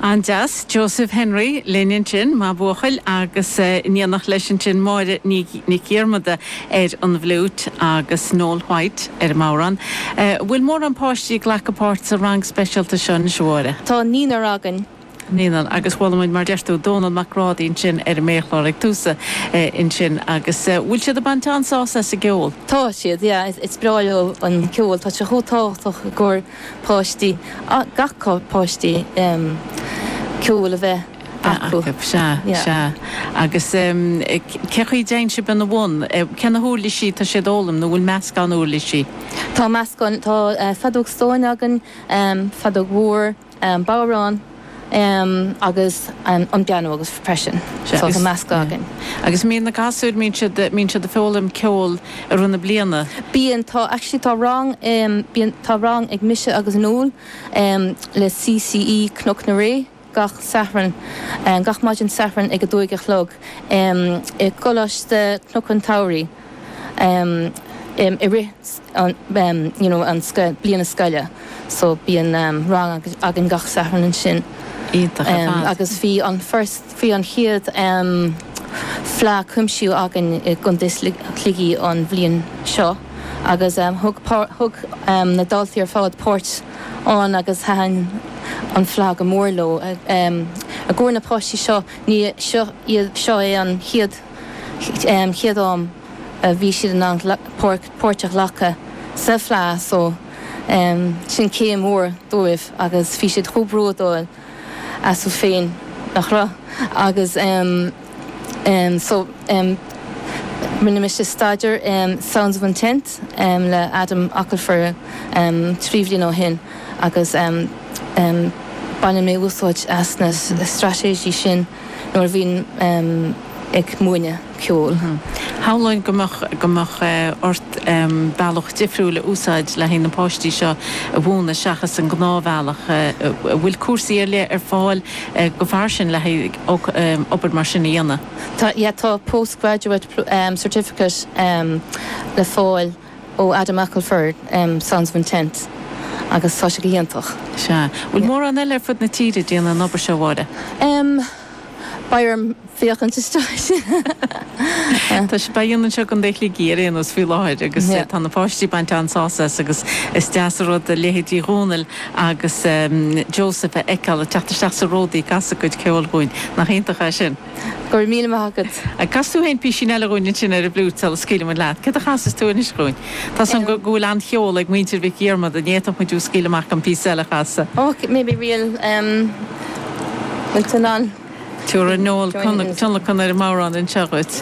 An-deas, Joseph Henry, linn ansin, maith buachaill, agus in éineacht leis ansin Máire Nic Dhiarmada ar an bhfliúit agus Noel White ar an mbodhrán. An bhfuil mórán páistí ag glacadh páirte sa rang speisialta seo anois, a Mháire? Tá naoinar againn. Naoinar, agus chuala muid, mar deir tú, Dónal Mac Brádaigh ansin ar an méarchlár ag tús ansin, agus an bhfuil siad ag baint an-sásamh as an gceol? Tá siad, yeah, is breá leo an ceol, tá sé chomh tábhachtach gur. páistí, gach páistí, ceol a bheith acu. Sea, sea. Agus cé chaoi a dtéann sibh ina bhun? Cé na huirlisí atá siad a fhoghlaim nó an bhfuil meascán uirlisí? Tá meascán, tá feadóg stáin againn, feadóg mhór, bodhrán. agus an pianó agus freisin sort meascadh againn. Agus bíonn na gasúir, bíonn siad, bíonn siad ag foghlaim ceol i rith na bliana? Bíonn, tá, actually tá rang, bíonn, tá rang ag mise agus Noel le CCE Cnoc na Ré gach Satharn, gach maidin Sathairn ag a deich a chlog i gColáiste Cnoc an tSamhraidh i rith. you know, an scoil, bliana scoile, so bíonn rang againn gach Satharn ansin. Iontach, ar fad. Agus bhí an first, bhí an chéad fleadh cuimsiú againn i gContae Shligigh an bhliain seo agus thóg thóg na daltaí ar fad páirt ann agus thaitin an fleadh go mór leo. I gcomhair na páistí seo, ní, seo iad, seo é an chéad. chéad am a bhí siad in ann páirt a ghlacadh sa bhFleadh so sin céim mhór dóibh agus bhí siad chomh bródúil astu féin nach raibh agus so rinne mise staidear Sounds of Intent le Adam Ockelford trí bhliain ó shin agus baineann mé úsáid as na straitéisí sin. nuair a bhíonn mé ag múineadh ceoil. Shamhlóinn go mbeadh, go mbeadh ort bealach difriúil a úsáid le haghaidh na páistí seo a mhúineadh seachas an gnáthbhealach. An bhfuil cúrsaí ar leith ar fáil go fairsing le haghaidh obair mar sin a dhéanamh? Tá, yeah, tá Postgraduate Certificate le fáil. ó Adam Ockelford, Sounds of Intent, agus tá sé go híontach. Sea. Bhfuil mórán eile ar fud na tíre ag déanamh an obair seo, a Mháire? Beidh orm féachaint isteach. Tá sé, sibh á dhéanamh anseo i gContae Shligigh ar aon nós faoi láthair agus tá na páistí ag baint an-sásamh as agus is deas an rud leithéidí Dhónaill agus Joseph a fheiceáil ag teacht isteach sa ródaí ag casadh a gcuid ceoil chugainn. Nach iontach é sin? Go raibh míle maith agat. An gcasfaidh tú aon písín eile dhúinn ansin ar an bhfliúit sula scaoilfidh muid leat. Céard a chasfas tú anois dhúinn? Tá a fhios againn go bhfuil an-cheol ag muintir Mhic Dhiarmada. Ní fhéadfadh muid thú a scaoileadh amach gan píosa eile a chasadh. Och, maybe we'll um we'll turn on. Tiúrfaidh Noel tionlacan ar an mbodhrán anseo dhuit.